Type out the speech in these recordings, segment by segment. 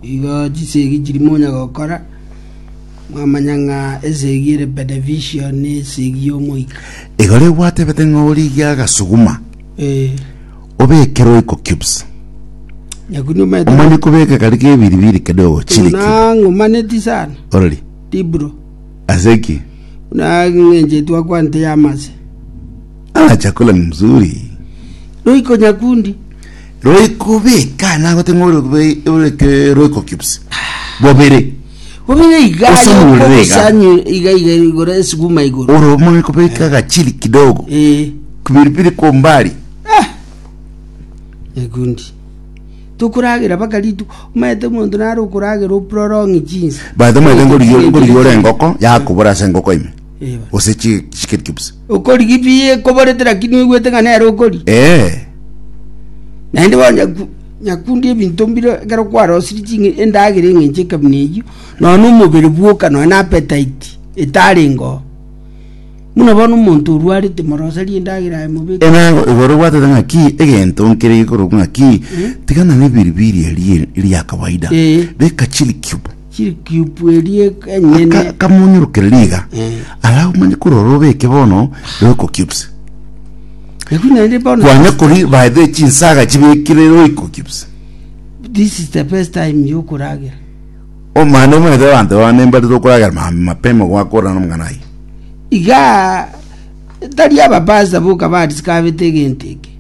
Igo chisegi chiria monya gokora, mwamanya ng'a esegi ere beneficio nesegi y'omoika. Igoro egwatebete ng'a origie agasuguma Eh, obeke roiko cubes nyaku nomanyete omanye kobeka kari kebiribiri kende ogochiriki buna ng'omaneti sana orori dibro aseki buna ng'encheti wakwante yamase ah chakula ni mzuri roiko nyakundi Roiko beka nagote ng'a orebe oreke roiko cubes bobere Bobere iga Ose aye omorere iga. okobosanya iga iga igoro esuguma igoro. oro omanye kobeka agachili kidogo Eh. kpilipili kwa umbali Ah! Egundi. Tokoragera baka ritu omanyete omonto naro okoragera oprolong jinsi. baito omanyete ngori Ogochika ngori ore egundi. engoko yakobora ase engoko ime Eba. gose chi- chikeri chobisa Okorigia pi ekoborete lakini oigwete ng'a nere okori. ee Naende bono nyaku- nyakundi ebinto mbire ekero kwarosirie chinge endagera eng'encho ekabina eyio, nonya na omobere bwoka nonya na appetite etarengeo. Buna bono omonto orwarete moroserie endagera aye mobeke. enango igoro obwatete ng'aki egento nkere gekorokwa ng'aki tigana na ebiribiri erie eria kawaida Ee. beka chili cube Chirikyipu eria enyene. Ka- kamonyorokere riga Eh. ara omanye korora obeke bono roiko cubes Eki naende bono. kwanya kori baethere chinsaga chibekire roiko cubes This is the best time yokoragera. omana omanyete abanto babo nembarire okoragera ma- mapema gwakorana nomong'ana aye Iga tari abapasta boka barisika abete egento eke.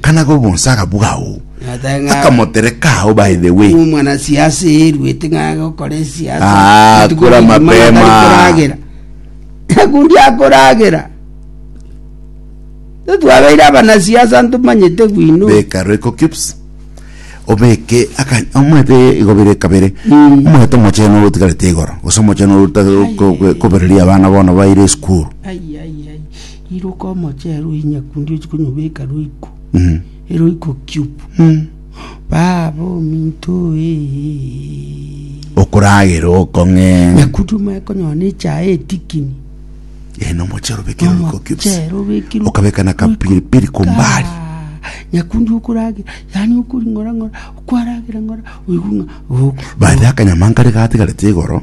kana gobonsaga bwao Ata ng'a- akamotereka ao by the way omwana siasa eruete ng'a gokora esiasa Ah, Ati kora kuri mapema. mang'ana tari koragera nakundi akoragera totwabeire abanasiasa ntomanyete bwino beka roiko cubes obeke aka- omanyete igobere kabere Mm. omanyete omochene otigarete igoro gose omochene ota- ko- ko- kobereria abana bono baire esukuru Ai, ai, ai. Iruka omochie rwe inyakundi ochie konyobeka roiko eroiko cube baba ominto eeh. Okoragera okong'e. Nyakundi omanye konyora ne echae etikini. Eeh na omochie oro obekire roiko cubes. Omochie ero obekire. Okabeka na kapiri piri kwa ombali. Nyakundi okoragera yaani okoring'ora ng'ora okwaragera ng'ora oigwe ng'a. Baria akanyama nkare gatigarete igoro.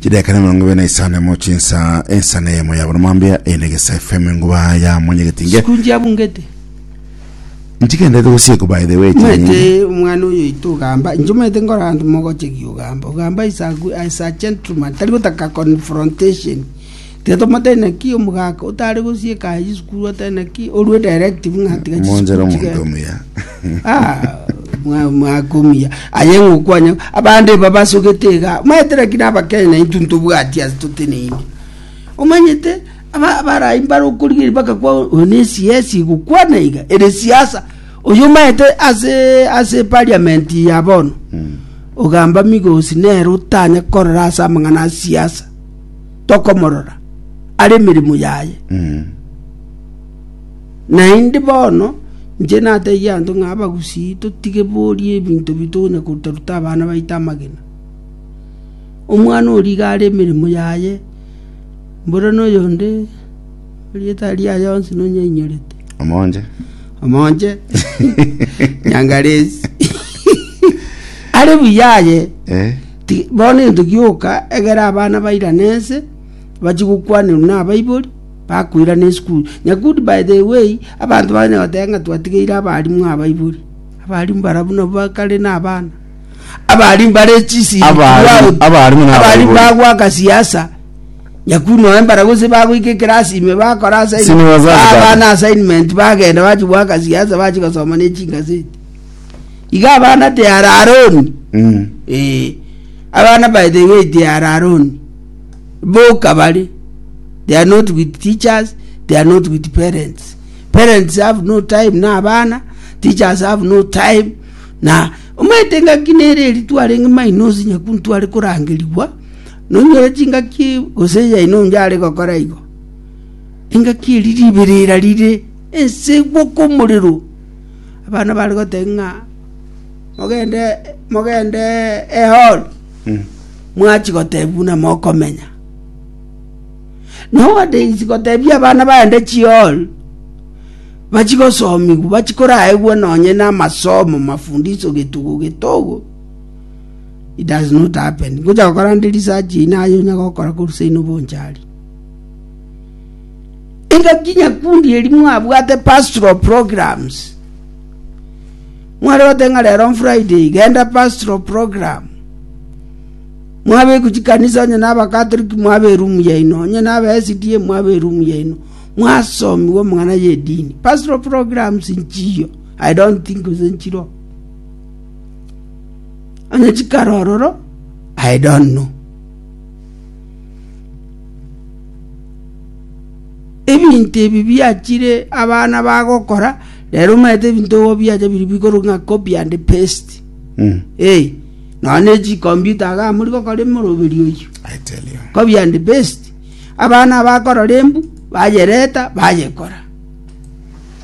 chidakika na emerongo ebere na isano na emo chinsa ensa na eyemo ya bono mwambia ende egesa fm enguba ya mwanyegetinge sikunji abungete nchigenderete gosiekwa by the way chinyingi mwete omwana oyo oito ogamba inche mwete nkora abanto mogochegi ogamba ogamba is a, gu- is a gentleman tari gotaka confrontation Titomotebi naki omogaka otare gosieka aye chisukuru otari naki orue directive ng'a tiga Monjera chisukuru chigende. omonto omuya. Ah, mwa- mwakumia aye ng'okwanya abande eba basogete iga maete lakini abakenya naintwe ntobwati ase toteneine omanyete aba- abarai mbare okorigeri bagakwa oyo ne cs igokwana iga ere siasa oyo maete ase ase parliament ya bono ogamba migosi nere otanya korora ase amang'ana a siasa tokomorora are emeremo yaye. Naende bono inche natebirie abanto ng'a abagusii totige boria ebinto bi tokonya koruta-ruta abana baito amagena. Omwana oria iga are emeremo yaye, mbora na oyonde erieta riria aye onsi nonya ainyorete. Omonje. Omonje. Nyangaresi. Are buya aye. Eh. Bono intuki oka, egera abana bairane ense, bachie gokwanerwa nabaibori, bakoirana esukuru. Nyakudi by the way, abanto bang'ina goteba ng'a twatigeire abalimu abaibori. Abalimu barabwo nabwo bakare nabana. Abalimu bare chisiri Abalimu- throughout. abalimu na Abalimu abaibori. bagwaka siasa. Nyakudi noe mbara gose bagoika ekerasi ime bakora assignment. Sini wazazi Baha baba. abana assignment bagenda bachi gwaka siasa bachi gosoma ne chingazeti. iga abana de Araroni, Mm. eh, abana by the way de Araroni, boka bari, they are not with teachers, they are not with parents. Parents have no time na abana, teachers have no time na omanyete ngaki nere eri twarenge mainosi nyaku ntware korangerigwa nonyore chingaki gose yaino onje are gokora igo engaki eri riberera rire ense gwoko omorero abana bare goteba ng'a mogende mogende ehori mwachi goteba buna mokomenya nowadays gotebia abana baende chihori bachi gosomigwa bachi koraegwa nonye na amasomo mafundisho getogo getogo it does not happen ngocha gokora nde research eye naye onya gokora korwa seino bonchari Engaki nyakundi eria mwabwate pastoral programs. Mware goteeba ng'a rero Friday genda pastoral program. Mwabekwa chikanisa onye na Abakatoliki mwaba erumu yaino, onye na Aba-SDA mwaba erumu yaino. Mwasomiwa amang'ana y'edini. Pastoral programs nchiyo. I don't think gose nchiroo. Onye chikare ororo, I don't know. ebinto ebi biachire abana bagokora rero omanyete ebinto igo biacha biri bigoro ng'a copy and paste Mm. eh nonya ne chikombiuta iga muri gokora emoroberi oyio I tell you. copy and paste abana bakorora embu bayereta bayekora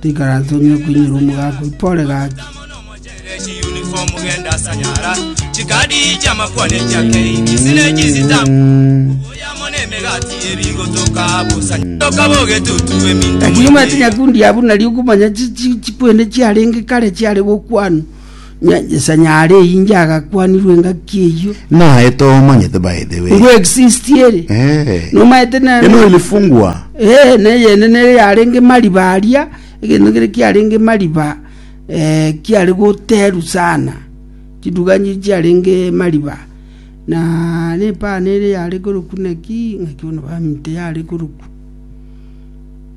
Tikaratong'e koinyora omogaka oito ore gaki. Ekinyumaete nyakundi ya buna ri'okomanya chi- chi- chikwene chiarenge kare chiare gokwanwa, Nyanchesa nyare inche agakwanirwa engaki eyio. Naye tomanyete by the way. Ngo exist ere. Eh. Nomaete na Eno ilifungwa. Eh, ne yene ne yarenge mariba aria, egento kere kiarenge mariba eh kiare goteru sana. Chiduga nji chiarenge mariba. Na ne pane ere yare koroku naki, naki bono bamite yare koroku.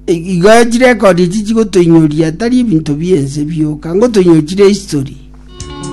Igo chirekondi echi chigotoinyoria tari ebinto bi'ense bioka, ngotoinyoria chire history.